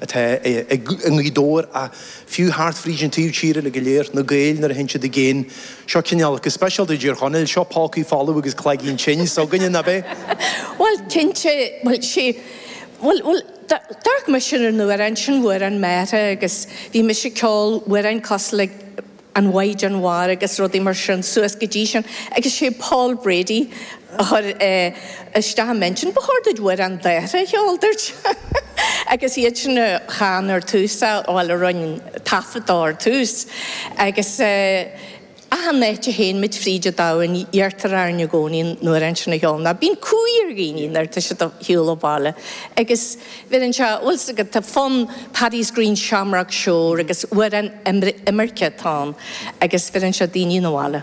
atá i nGaoth Dobhair ach fiú thart fríd an taobh tíre uilig go léir, na Gaeil nuair a théann siad i gcéin. Seo cineál, go speisialta i dTír Chonaill, seo pócaí folamh agus cloigeann tinn s'againne, nab é? Bhuel, cinnte, bhuel, sí, bhuel, bhuel, d'fhoghlaim mise an t-amhrán sin, amhrán m'athara agus bhí mise ag ceol amhráin cosúil le, an Mhaighdean Mhara agus rudaí mar sin suas go dtí sin agus sé Paul Brady a chuir isteach i m'intinn ba chóir duit amhrán d'athara a cheol a dúirt agus iad sin a chan ar tús é bhuel a rinn taifead dó ar tús agus achan áit a théann muid fríd an domhain iarrtar orainn i gcónaí an t-amhrán sin a cheol nó bíonn cumhaidh ar dhaoine nuair atá siad ar shiúl ó bhaile agus. Bheireann seo, a bhfuil 's agat, tá fonn Paddy's Green Shamrock Shore agus amhrán imirce atá ann agus bheireann seo daoine 'na bhaile.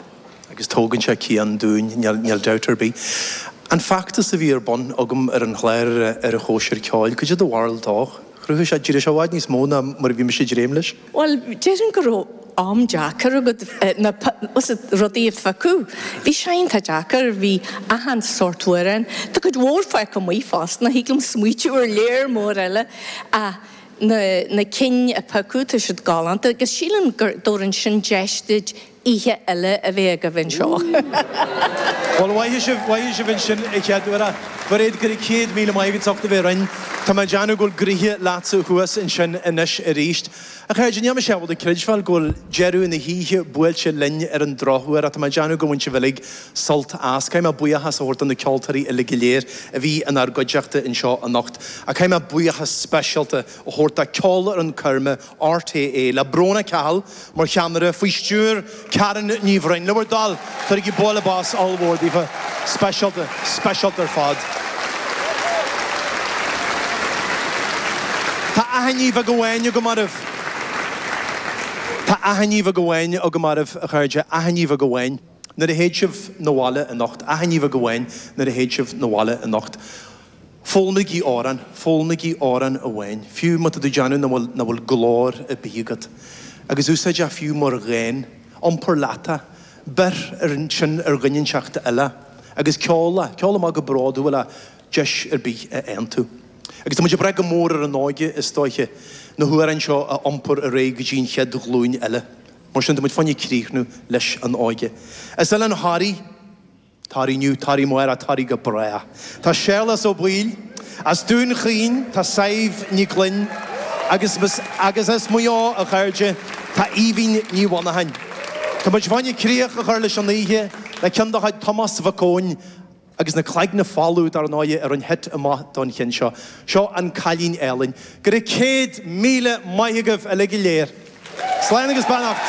agus tógann sé cian dúinn, níl dabht ar bith. An feachtas a bhí ar bun agam ar an chlár ar an Chóisir Cheoil, cad é do bharúil dó, chruthaigh sé, d'éirigh sé i bhfad níos mó ná mar a bhí mise ag dréim leis. Bhuel, déarfainn go raibh am deacair agat, na rudaí a phiocadh, bhí sé iontach deacair, bhí achan sórt amhrán, tá cuid mhór fágtha amuigh fosta, thig liom smaoitiú ar lear mór eile ach na cinn a piocadh tá siad galánta agus sílim go dtabharann sin deis duit oíche eile a bheith agaibh anseo. Bhuel, caithfidh sibh, caithfidh sibh sin a cheiliúradh. Mhairéad, go raibh céad míle maith agat as ucht a bheith linn. Tá mé ag déanamh go bhfuil gnoithe leatsa thuas ansin anois arís. A chairde, níl mise ábalta a chreidbheáil go bhfuil deireadh na hoíche buailte linn ar an drochuair ach tá mé ag déanamh go mbain sibh uilig sult as. Caithfidh mé buíochas a thabhairt do na ceoltóirí uilig go léir a bhí inár gcuideachta anseo anocht. Ach caithfidh mé buíochas speisialta a thabhairt do Cheolfhoireann Choirme RTÉ, le Bróna Cahill mar cheannaire, faoi stiúir Karen Ní Bhroin. Le bhur dtoil, cuirigí bualadh bos ollmhór daofa. Speisialta, speisialta ar fad. Tá achainí bheag amháin agam oraibh. Tá achainí bheag amháin agam oraibh, a chairde, achainí bheag amháin nuair a théid sibh 'na bhaile anocht, achainí bheag amháin nuair a théid sibh 'na bhaile anocht. Foghlaimígí amhrán, foghlaimígí amhrán amháin, fiú má tá tú ag déanamh nach bhfuil, nach bhfuil glór ar bith agat. Agus úsáid é fiú mar dhán, iompair leat é, beir ansin ar dhuine inteacht eile agus ceol é, ceol amach go bródúil é, deis ar bith a fhaigheann tú. Agus tá muid ag brath go mór ar an óige, is dóiche, na hamhráin seo a iompar ar aghaidh go dtí an chéad ghlúin eile. Mar sin, tá muid fá choinne críochnú leis an óige. Is é linn Harry! Tar inniu, tar i mbarr a toraidh go breá. Tá Séarlas Ó Baoill as Dún Chaoin, tá Sadhbh Ní Ghloinn agus as Maigh Eo, a chairde, tá Aoibhín Ní Mhonacháin. Tá muid ag gabháil críoch a chur leis an oíche le ceann de chuid Tomás Mhic Eoin agus na Cloigne Folmha, dar ndóigh, ar an hit amuigh don cheann seo. Seo An Cailín Álainn. Go raibh céad míle maith agaibh uilig go léir. Slán agus beannacht.